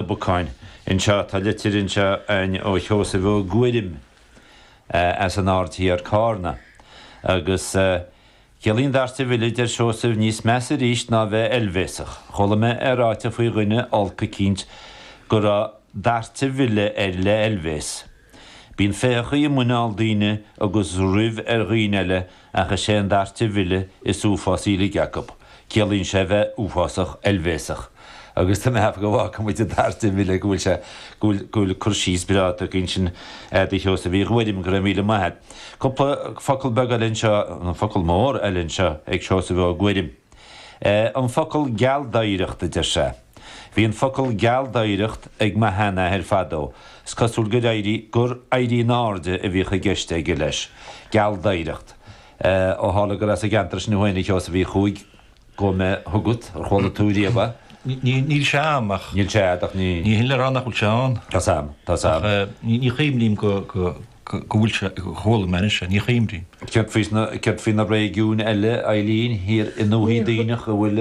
na bacáin. Anseo, tá litir anseo a'inn ó Sheosaimh Ó Guairim as an Aird Thiar, Cárna. Agus ciallaíonn dairt a mhilleadh, a deir Seosamh, níos measa aríst ná bheith oilbhéasach. Chuala mé é ráite faoi dhuine olc eicínt go raibh that the ville air le oilbhéas. Bíonn féitheachaí i muineál daoine agus ruibh ar dhaoine eile ach is é an dairt a mhilleadh is uafásaí uilig acu. Ciallaíonn sé a bheith uafásach oilbhéasach. Agus tá mé ag ceapadh go bhfágfaidh muid an dairt a mhilleadh, go bhfuil sé, go bhfuil, go bhfuil cur síos breá agat ansin, a Sheosaimh Uí Ghuairim, go raibh míle maith a't. Cúpla focal beag eile anseo, nó focal mór eile anseo ag Seosamh Ó Guairim. An focal gealdoighreacht a deir sé. Bhí an focal gealdoighreacht ag mo sheanathair fadó, is cosúil gur éirí, gur éirí in airde a bhíodh i gceist aige leis. Gealdoighreacht. Eh, ó tharla gur as an gceantar sin thú féin, a Sheosaimh Uí Chuaig, gabhfaidh mé chugat, ar chuala tú riamh é? Níl sé a'am ach. Níl sé a'd ach ní. Ní shin le rá nach bhfuil sé ann. Tá's a'm, tá's a'm. Ach eh, ní chuimhním go, go, go, go bhfuil sé, gur chuala mé anois é, ní chuimhním. Céard faoi na, céard faoi na réigiúin eile, a Eilín, thiar i ndúthaigh Duibhneach an bhfuil.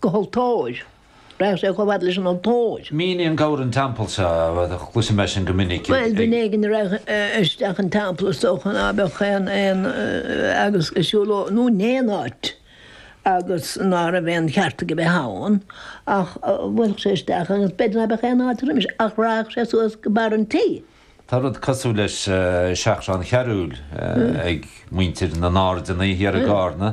Go haltóir! Raghadh sé chomh fad leis an altóir. Mínigh an gabhar an teampall seo, chloisim é sin go minic ag. Bhuel, duine éigin a raghadh isteach an teampall is dócha ná beadh aon, aon, agus ag siúl nó in aon áit agus ná raibh aon cheart aige bheith ann ach bhuailfeadh sé isteach agus b'fhéidir ná beadh aon áit roimis ach raghadh sé suas go barr an tighe. Tá rud cosúil le seachrán chearúil ag muintir na nAirdeanna thiar i gCarna,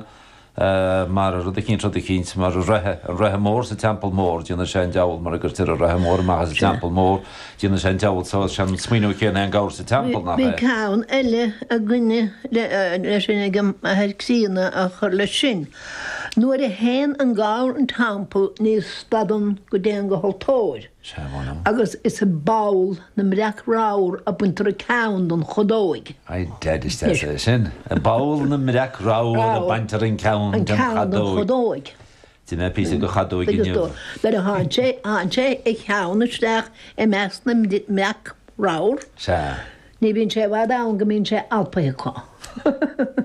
mar rud eicínt, rud eicínt mar an Reithe, an Reithe Mór sa Teampall Mór, déanann sé an deabhal mara gcuirtear an Reithe Mór amach as an Teampall Mór, déanann sé an deabhal so is é an smaoineamh céanna é an gabhar sa teampall, nach é? Bhí ceann eile againne le sin ag an Athair Críonna á chur leis sin, Nuair a théann an gabhar 'an teampall ní stadann go dtéann go haltóir. agus is i bpoll na mbreac ramhar a baintear an ceann den chadóig. I did, is deas é sin. I bpoll na mbreac ramhar a baintear an ceann den chadóig. D'ith mé píosa de chadóig inniu. Agus do, nuair a théann sé, theann sé a cheann isteach i measc na mbreac ramhar. Sea. Ní bhíonn sé i bhfad ann go mbíonn sé alpaithe acu.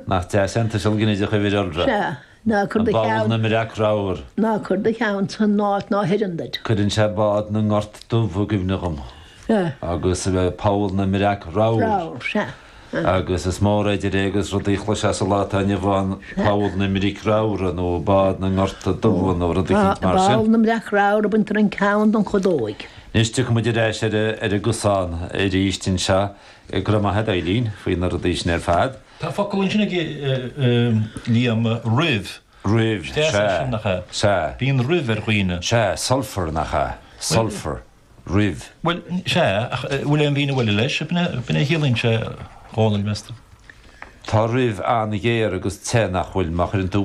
Nach deas é an tuiseal ginideach uimhir iolra? Sea. Ná cuir do cheann. I bpoll na mbreac ramhar. Ná cuir do cheann san áit ná h-oireann duit. Cuireann sé bád na ngort dubh i gcuimhne dhom. Sea. Agus poll na mbreac ramhar. Ramhar, sea. Agus is mór idir é agus rudaí a chloisfeá sa lá atá inniu ann, poll na mbric ramhra nó bád na ngort dubha nó rud eicínt mar sin. Poll na mbreac ramhar a baintear an ceann den chadóig. Anois tiocfaidh muid ar ais ar an gcosán aríst anseo. Go raibh maith agat, a Eilín, faoi na rudaí sin ar fad. Tá focal ansin ag Liam, ruibh. Ruibh, sea. Deas é sin, nach ea? Sea. Bíonn ruibh ar dhaoine. Sea, sulphur, nach ea? Sulphur, ruibh. Bhuel, sea, ach an bhfuil aon mhíniú eile leis? B'in a chiallaíonn sé, a Dhomhnaill, meas tú? Tá ruibh an-ghéar agus te, nach bhfuil, má chuireann tú.